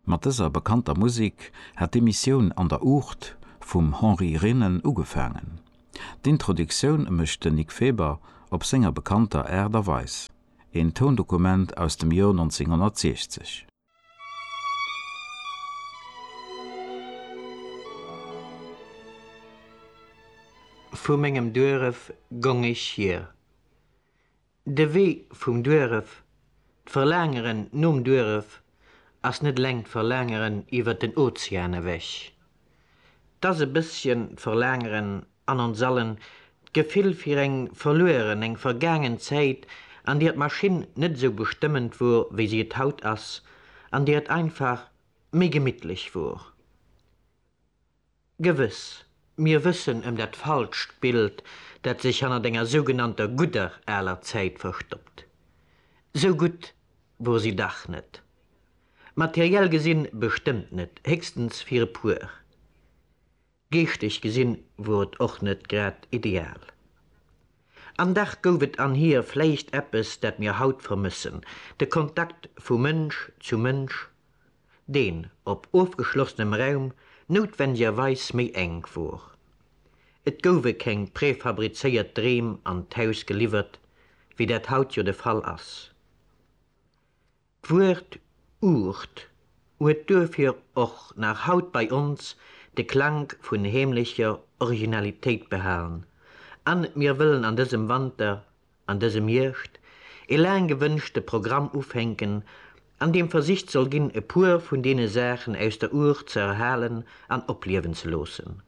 Mat dëser bekannter Musik hat d'Emissioun An der Uucht vum Henri Renen ugefaangen. D'Introductioun mécht den Nic Feber op senger bekannter Aart a Weis, een Toundokument aus dem Joer 1960. Vu mengem Dueref gong ech hier. De Wee vum Duerf, d'Verlaangeren nom Duerf ass net eleng d'Verlaangeren iwwer den Ozean ewech. 't ass e bësschen d'Verlaangeren an ons allen, d'Gefill fir eng verlueren, eng vergaangen Zäit, an deer d'Maschinn net esou bestëmmend wor, wéi si et haut ass, an deer et einfach méi gemittlech wor. Gewëss, mir wëssen ëm dat falscht Bild, dat sech hannert enger sougenannter gudder aler Zäit verstoppt. Sou gutt wor si dach net. Materiell gesinn bestëmmt net, héchstens fir e puer. Geeschteg gesinn wor et och net grad ideal. An dach gouf et an hir vläicht eppes, dat mir haut vermëssen, de Kontakt vu Mënsch zu Mënsch. deen op ofgeschlossenem Raum noutwendigerweis méi enk wor. Et gouwe keng prefabrizéiert Dreem an d'Haus geliwwert, wéi dat haut jo de Fall ass. D'Wuert Ucht huet duerfir och nach haut bei ons de Klank vun heemlecher Originalitéit behalen, an mir wëllen an dësem Wanter an dësem Hierscht ee laang gewënschte Programm ufänken, an deem versicht soll ginn, e puer vun deene Saachen aus der Our ze erhalen an opliewen ze loossen.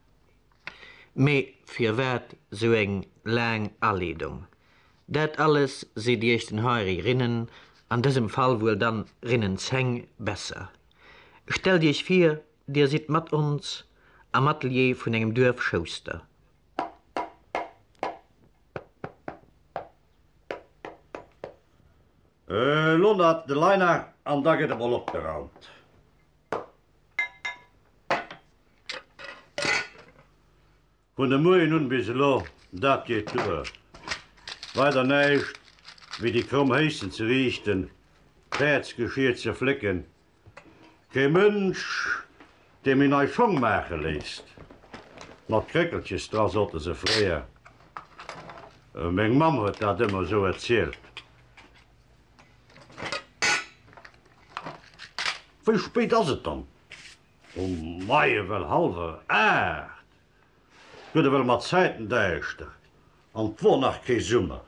Mee firwat sou eng laang Aleedung? Dat alles seet Iech den Henri Rinnen, an dësem Fall wuel dann Rinnen 10, besser. Stellt Iech vir, Dir sidd mat ons am Atelier vun engem Duerfschouster. Äh, lo na de Liner an da gëtt emol opgeraumt. Vun de Moien un bis elo, dat geet duer. Weider näischt wéi déi kromm Héissen ze riichten, d'Pärdsgeschier ze flécken Kee Mënsch, dee méi nei Schong maache léisst, mat Kréckelches dra, sotte se fréier. Meng Mamm huet dat ëmmer esou erzielt. Wéi spéit ass et dann um Moie? Well hallwer aacht. Guet ewell mat Zäiten däischter an 't wor nach kee Summer.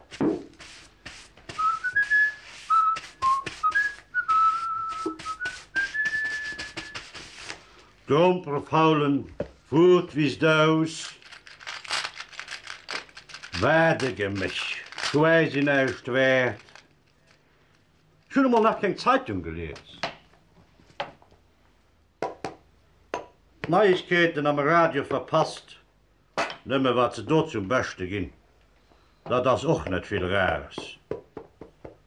D'Grompere faulen wor d'Wiisst aus. Wat e Geméch, quäsi näischt wäert. Ech hun emol nach keng Zeitung gelies. D'Neiegkeeten am Radio verpasst, nëmme wat se do zum Beschte ginn, dat ass och net vill Rares.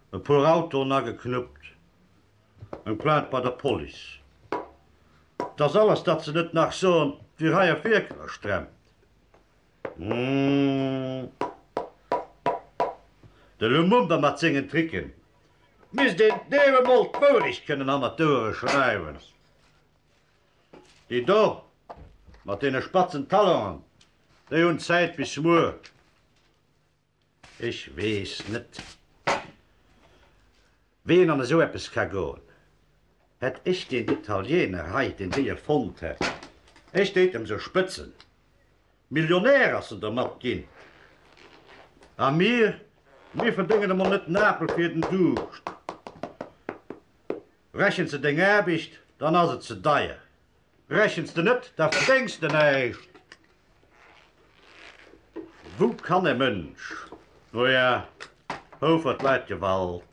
E puer Autoen ageknuppt, eng Plainte bei der Police, dass alles dat se net nach soen, wier hei op Wierker gestremmt. Hm, de Lumumba mat sengen Tricken Et misst een deem emol d'Wourecht kënnen hannert d'Ouere schreiwen. Déi do mat deene spatzen Talongen, déi hunn Zäit bis muer. Ech weess net, wéi een an esou eppes ka goen. Hätt ech deen Italieener hei, deen déi erfonnt hätt, ech déit em sou spëtzen. Millionär ass en dermat ginn. A mir, mir verdéngen emol net en Apel fir den Duuscht. Rechens de deng Aarbecht, dann ass et ze deier. Rechens de net, da verdéngs de näischt. Wou kann e Mënsch, no ja, Houfert Leit Gewalt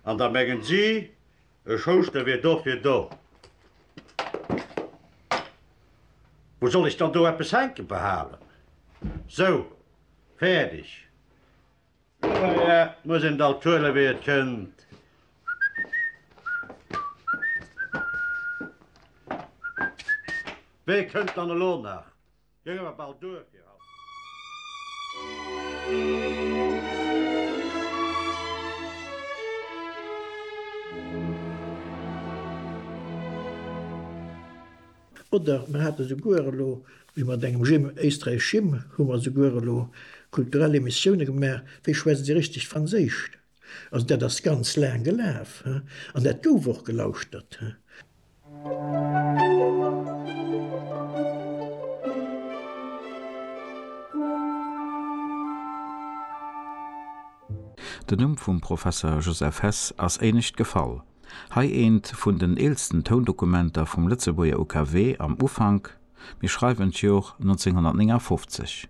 an da mengen si, E Schouschter wier do fir do. Wou soll ech dann do eppes hänke behalen? Sou, fäerdeg. Dohier muss een et alt huelen, wéi et kënnt. Wee kënnt dann elo nach? Mir si mer bal duer fir haut. Oder mer hate souguer elo, wéi mat engem Jim Éisträich Jim, hu mer souguer elo kulturell Emissioune gemaach, wéi schwätzt ee richtegt Franséisch? Also dat ass ganz laang gelaf an dat gouf och gelauschtert. Den Numm vum Professer Joseph Hess ass éinescht gefall. Hei eent vun den eelsten Toundokumenter vum Lëtzebuerger UKW am Ufank, mir schreiwen d'Jor 1959.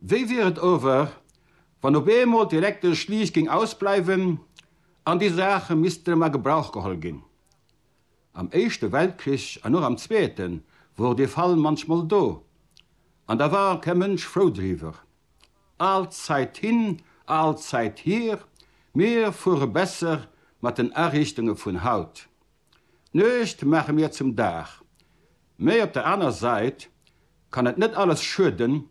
Wéi wier et ower, wann op eemol d'elektesch Liicht géing ausbleiwen an déi Saache missten erëm a Gebrauch geholl ginn? Am Éischte Weltkrich an och am Zweete wor dee Fall munchmol do, an da war kee Mënsch frou driwwer. All Zäit hin, all Zäit hier, mir fuere besser mat den Ariichtunge vun haut. D'Nuecht maache mir zum Dag, mä op der aner Sait kann et net alles schueden,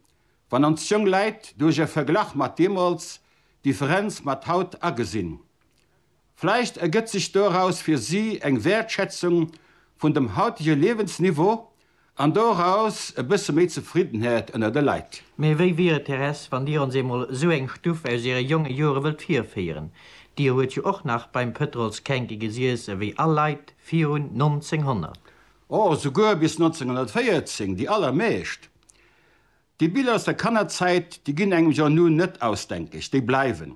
wann ons jong Läit duerch e Verglach mat deemols d'Differenz mat haut agesinn. Vläicht ergëtt sech doraus fir si eng Wäertschätzung vun dem hautege Liewensniveau An doraus e bësse méi Zefriddenheet ënner de Leit. Mee wéi wier et, Thérèse, wann Dir ons eemol esou eng Stuff aus Iere jonge Jore wëllt virféieren? Dir huet jo och nach beim Pëtrols Känke gesiess ewéi all Leit virun 1900. O, souguer bis 1914, déi allermeescht. Déi Biller aus der Kannerzäit, déi ginn engem jo nun net ausdenkeg, déi bleiwen.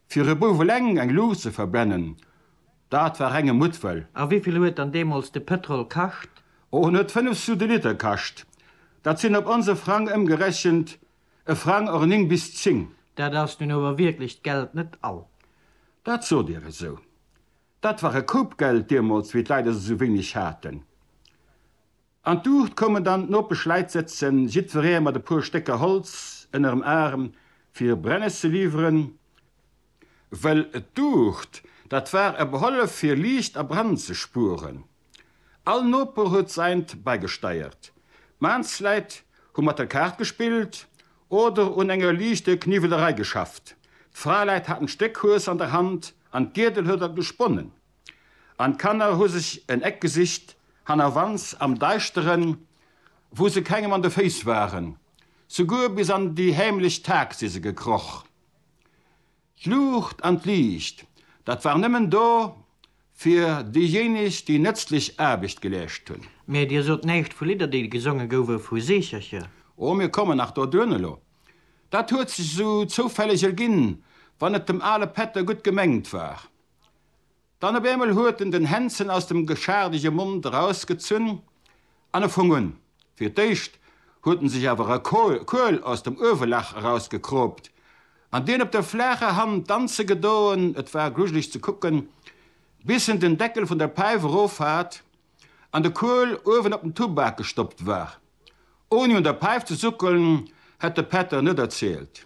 Fir e Bouf eleng eng Luucht ze verbrennen, dat war renge Muttwëll. A wéivill huet dann deemools de Pëtrol kascht? Oh, en huet 5 sous de Liter kascht. Dat sinn op onse Frang ëmgerechent e Frang or 9 bis 10. Dat ass nun ower wierklech d'Geld net all. Dat sot Dir esou. Dat war e Koup Geld deemools, wéi d'Leit esou wéineg haten. An d'Uucht koumen dann d'Nopesch Läit sëtzen, jiddferee mat e puer Stécker Holz ënnerem Aarm, fir Brennes ze liwweren, wëll d'Uucht, dat war e Behollef, fir Liicht a Brand ze spueren. All Noper huet säint bäigesteiert. D'Maansläit hu mat der Kaart gespillt oder un enger liichte Kniwwelerei geschafft. D'Fraeläit haten d'Stéck Hues an der Hand an d'Giedel huet dat gesponnen. an d'Kanner hu sech en Eck gesicht, hannerwands am Deischteren, wou se kengem an de Féiss waren. Souguer bis an déi heemlech Tag si se gekroch. D'Luucht an d'Liicht, dat war nëmmen do fir déijéineg, déi nëtzlech Aarbecht geleescht hunn. Mee Dir sot näischt vu Lidder, déi gesonge gouwe vu Seechercher. Oh, mir kommen nach doduerno elo. Dat huet sech esou zoufälleg erginn, wann et dem ale Pätter gutt gemengt war. Dann op eemol huet en den Hänzen aus dem geschaardege Mond erausgezunn an e fong un. Fir d'éischt huet en sech awer e Kuel aus dem Uewelag erausgekroopt an deen op der flaacher Hand danze gedoen, et war grujeleg ze kucken, bis en den Deckel vun der Päif erof hat an de Kuel uewen op den Tubak gestoppt war. Ouni un der Päif ze suckelen, hätt de Pätter net erzielt.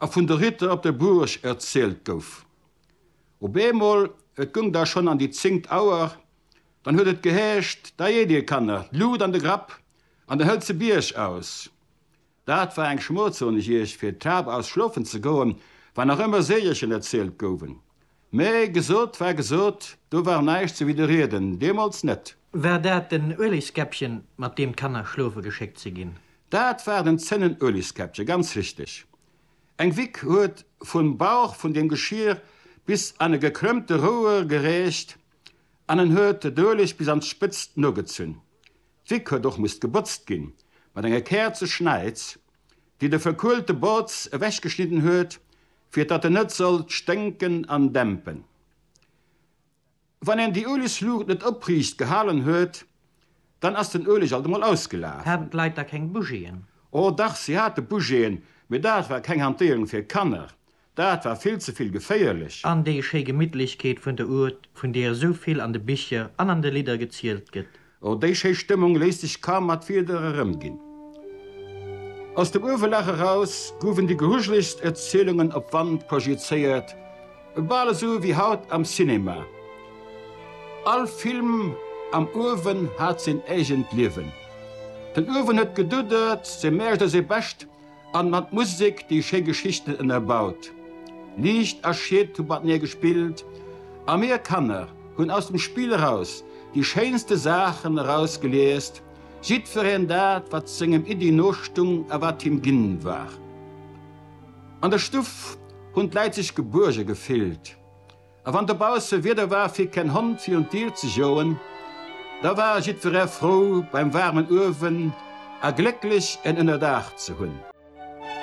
a vun de Ritter op der Buurg erzielt gouf. Op eemol, et gung da schon an déi zéngt Auer, dann huet et geheescht, Da eet dir, Kanner, d'Luut an de Grapp an dann hëllt se Bierg aus. Dat war eng Schmoll, soen ech iech, fir d'Taup aus schlofen ze goen, wann nach ëmmer Seegelchen erzielt gouwen. Mä gesot war gesot, do war näischt ze widderrieden, deemools net. War dat den Uelegskäppchen, mat deem d'Kanner schlofe geschéckt si ginn? Dat war den Zénnenuelegskäppchen, ganz richteg. Eng Wick huet vum Bauch vun deem Geschier bis an e gekrëmmte Rouer gereecht an en huet d'Ueleg bis an d'Spëtzt nogezunn. D'Wick huet och musst gebotzt ginn, mat enge Käerzeschnäiz, déi de verkuelte Botz ewechgeschnidden huet, fir datt en net sollt sténken an dämpen. Wann een déi Uelegsluucht net opriicht gehalen huet, dann ass den Ueleg alt emol ausgelaf. Haten d'Leit da keng Bougiën? O dach, si hate Bougiën, mee dat war keng Hantéierung fir Kanner. Dat war vill ze vill geféierlech. An déi schéi Gemittlechkeet vun der Ourthe, vun deer esou vill an de Bicher an an de Lidder gezielt gëtt. O déi schéi Stëmmung léisst sech kaum mat Wieder erëmginn. Aus dem Uewelag eraus gouwen déi grujelegst Erzielungen op Wand projizéiert, bal esou wéi haut am Cinema. All Film am Uewen hat seen eegent Liewen. Den Uewen huet geduddert, seng Mäercht a seng Bescht An mat Musek déi schéi Geschichten ënnerbaut. Liicht a Schied hu matenee gespillt a mir Kanner hunn aus dem Spill eraus déi schéinste Saachen erausgeliest, jiddwereen dat, wat sengem Iddi nostung a wat him ginn war. An der Stuff hunn d'Läit sech gebuerge gefillt. A wann dobausse Wieder war fir keen Hond fir un d'Dier ze joen, da war jiddweree frou beim waarmen Uewen a glécklech en Ënnerdaach ze hunn.